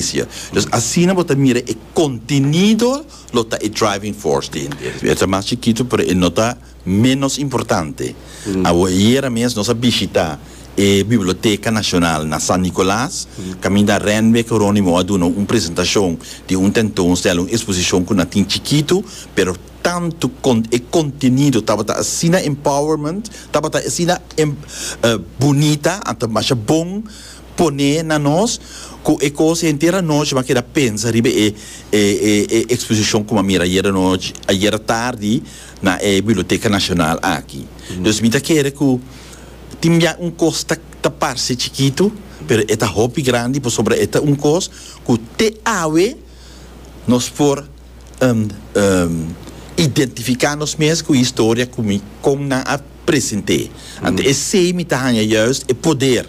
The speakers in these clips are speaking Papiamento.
Galicia. Entonces asina bo ta mira e contenido lo ta e driving force di henter. E ta mas chikito pero e no ta menos importante. Awo ayera mes nos a bishita e Biblioteca Nacional na San Nicolas caminda Renwick Geronimo a duna un presentacion di un tentoonstelling, un exposicion cu nan tin chikito pero tanto e contenido tabata asina empowerment, tabata asina bonita and ta masha bon. Pone na nos cu e cos henter anochi m'a keda pensa riba e e exposicion cu m'a mira ayer anochi, ayer tardi na e Biblioteca Nacional aki. Dus mi ta kere cu tin bia un cos ta ta parce chikito pero e ta hopi grandi pasobra e ta un cos cu te awe nos por identifica nos mes cu e historia cu mi con nan a presente. Ante esey mi ta hanja juist e poder.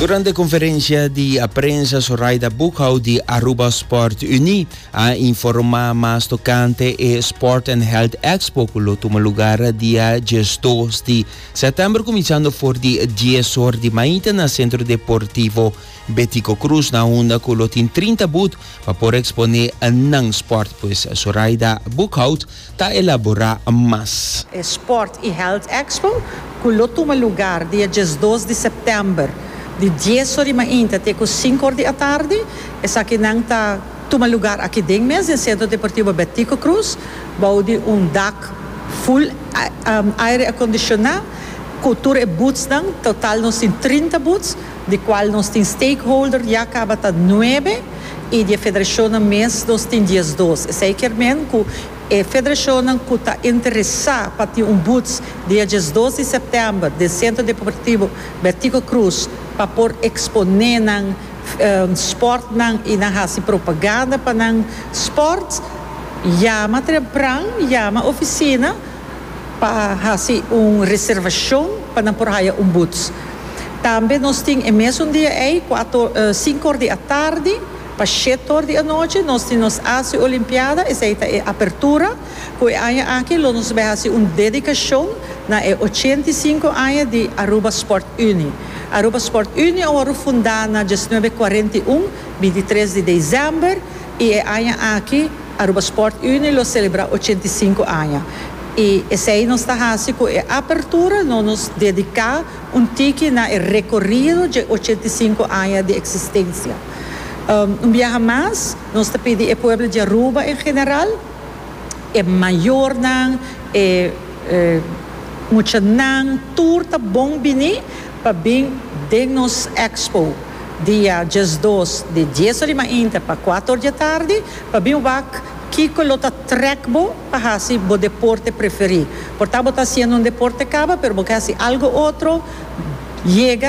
Durante e konferensia di a prensa Zoraida Boekhouw di Aruba Sport Unie a informá mas tokante e Sport and Health Expo ku lo tuma lugar dia dies dos di sètèmber kuminsando for di dies or di mainta na Sentro Deportivo Betico Cruz na hunda cu lo tin trinta boet pa por expone nan sport pues Soraida Boekhout ta elabora mas. E Sport y Health Expo cu lo tuma lugar dia diesdos di september di dies or di mainta te cu sinku or di atardi esakinan ta tuma lugar aki den mes den Centro Deportivo Betico Cruz bao di un dak full aire acondiciona cu tur e boetsnan total nos tin trinta boets di cual nos tin stakeholder ya caba ta nuebe y di e federacionnan mes nos tin diesdos, esey kier men cu e federacionnan cu ta interesa pa tin un boots dia diesdos di september den Centro Deportivo Bertico Cruz pa por expone nan sportnan y nan haci propaganda pa nan sports, yama trepran, yama oficina. pa hasi un reservashon pa nan por haya un buts. Tambe nos tin e mesun dia ei, kuater o sinku or di atardi pa shet or di anochi, nos tin nos asu e olimpiada, esei ta e apertura, ku e aña aki lo nos bai hasi un dedikashon na e ochenta i sinku aña di Aruba Sport Unie. Aruba Sport Unie a wòrdu fundá na diesnuebe kuarenta i un, bintitres di desèmber. I e aña aki Aruba Sport Unie lo selebrá ochenta i sinku aña. I esei nos ta hasi ku e apertura no nos dediká un tiki na e rekorido dje ochenta i sinku aña di eksistensia. Un biaha mas nos ta pidi e pueblo di Aruba en general, e mayornan, e muchanan tur ta bon biní. pa bin den nos Expo dia diesdos di dies orima inter pa kuater or di e tardi pa bin wak kiko lo ta trek bo pa hasi bo deporte preferí. Por ta bo ta hasiendo un deporte kaba pero bo ke hasi algo otro, yega.